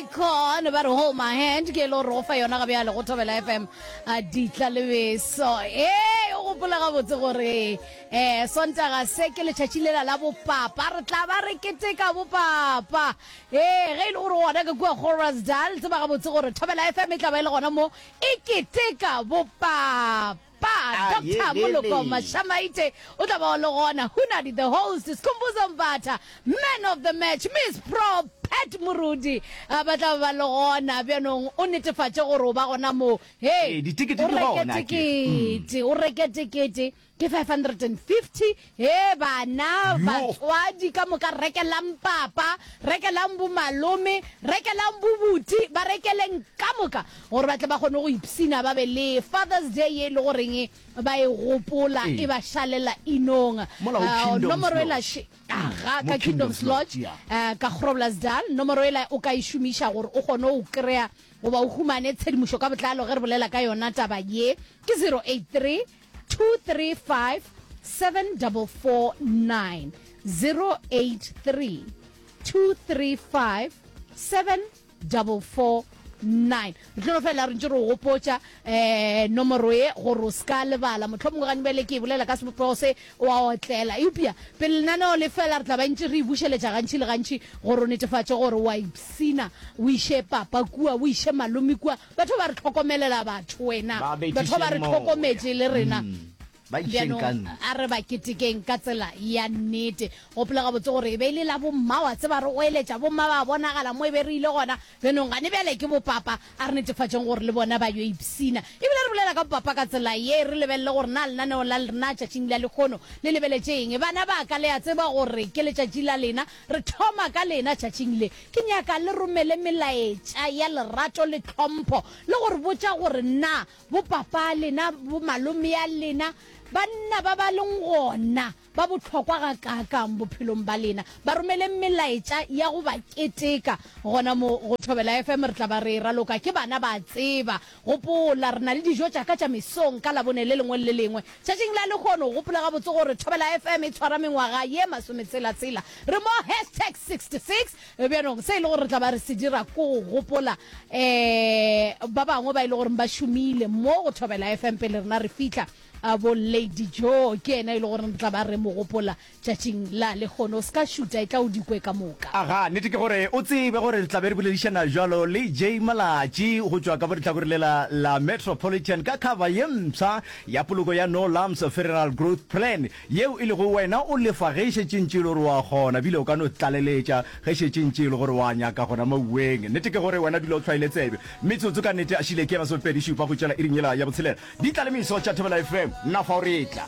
Icon ba re hold my hand ke lo rofa yona ga bjale go thobela fm a ditla le beso e o gopola gabotse gore eh sontaga se ke letšatši lela la bopapa re tla ba re keteka bopapa e ge e le gore gona ka kua gorasdal tseba gabotse gore thobela fm e tla ba e le gona mo e keteka bopapa Pa Doctor Moloko Mashamaite o tla ba o le gona, Hunadi the host, Skhumbuzo Mbatha, man of the match, Miss Pro Pat Morudi ba tla ba le gona. Bjanong o netefatše gore o ba gona moo. Hee, o reke tekete, o reke tekete ke 550. Hee bana, batswadi ka moka rekelang papa, rekelang bomalome, rekelang bobuti, ba rekeleng ka moka gore ba tle ba kgone go ipshina ba be le Father's Day ye e le goreng ba e gopola e ba šalela inong. Nomoro e la še, ga ka Kingdom's Lodge ka Groblersdal. Nomoro e la o ka e šomiša gore o kgone go kry-a goba o humane tshedimošo ka botlalo ge re bolela ka yona taba ye ke 083 tlo no fela re ntse re gopotsa um nomoro e gore o se ka lebala motlho mongwe gane bjale ke e bolela ka sebopego se wa otlela eupša pele lenaneo le fela re tla ba ntse re e bušeletša gantšhi le gantšhi gore o netefatše gore wa ipsina o iše papa kua o iše malome kua Batho ba re hlokomelela batho, wena. Ba bethiše Batho ba re moya. hlokometše le rena. Mm, ba išeng Bjanong, ka ntle. a re ba ketekeng ka tsela ya nnete. Gopola gabotse gore e be e le la bomma, wa tseba, re oeletša bomma ba bonagala mo e be re ile gona. Bjanong, gane bjale ke bopapa, a re netefatšeng gore le bona ba yo ipshina. E bile re bolela ka bopapa ka tsela ye, re lebelele gore na lenaneo la lrna tšatšing la lekgono le lebeletše eng. Bana ba ka, le a tseba gore ke letšatši la lena, Re thoma ka lena tšatšing le. Ke nyaka le romele melaetša ya lerato le tlhompho le go re botša gore na bopapa a lena, bomalome a lena, banna ba ba leng gona ba bohlokwa gakaakang bophelong ba lena. Ba romeleng melaetša ya go ba keteka gona mo go Thobela FM. Re tla ba re e raloka ke bana ba a tseba. Gopola, re na le dijo tša ka tša mesong ka Labone le lengwe le le lengwe. Tšatšing la lehono, gopola gabotse gore Thobela FM e tshwara mengwaga ye masometshela-tshela. Re mo hashtag 66. Bjanong, se e lego gore re tla ba re se dira ke go gopola um ba bangwe ba e lego gore ba šomile mo go Thobela FM pele rena re fihla. Bo Lady Joe ke yena e lego gore re tla ba re mo gopola Tšatšing la lehono o se ka šuta, e tla o di kwe ka moka. Aga, nnete ke gore o tsebe gore re tla be re boledišana bjalo le Jay Malatji go tšwa ka mo lehlakoreng lela la Metropolitan ka khaba ye mpsha ya poloko ya No Lumps Federal Growth Plan, yeo e lego wena o lefa ge e šetše ntše e le gore o a kgona ebile o ka no tlaleletša ge e šetše ntše e le gore o a nyaka gona moweng. Nnete ke gore wena dula o hlwaile tsebe. Metsotso ka nnete a šile ke ye masomepedi šupa go tšwela iring yela ya botshelela. Di tla le meso tša Thobela FM. Nna fa o re tla.